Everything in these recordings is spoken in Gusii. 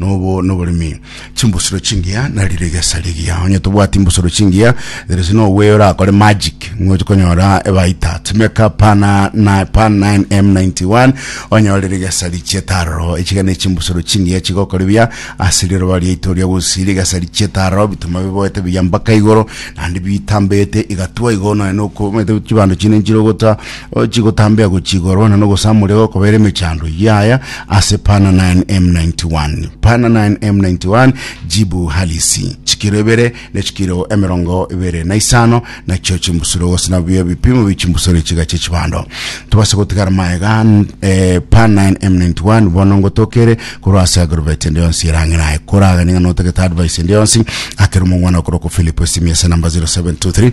nobo noboremi chimbusuro chingiya nari rigesa rigiya onye tobwati imbusuro chingiya there is no way orakore magic ngoche konyora ebaita timeka pana na pan 9m91 onye ore rigesa richietaro echigane chimbusuro chingiya chigokora biya ase riroba riaito ria gosi rigesa richietaro bituma biboete biya mpaka igoro nandi bitambete igatwa igo nonya nokomete chibando chine nchire ogota chigotambea gochia igoro, na nogosamorera gokobera emechando eyio yaya ase pana 9M91. Pana 9M91 jibu halisi, chikiro ibere ne chikiro emerongo ibere na isano nachio chimbusuro gose nabio ebipimo bie chimbusuro echiga chie chibando. Tobase gotigara maega eh, pan 9M91 bono ngotokere korwa ase agrovet ende yonsi erang'ina aye koragania ng'a notagete advice ende yonsi akere omong'wana okorokwa Philip esimi ase namba 0723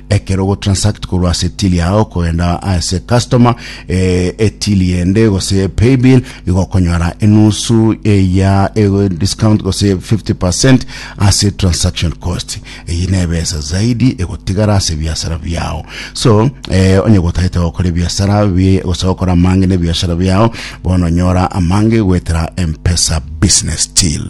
Ekero ogotransact korwa ase till yao kogenda ase customer eh, etili yende gose paybill igokonyora enusu eya ego discount gose 50% ase transaction cost eyi nebesa zaidi egotigara ase biasara biao so eh, onye gotagete gokora ebiasara bi- gose gokora amange ne biashara biao bono nyora amange gwetera mpesa business till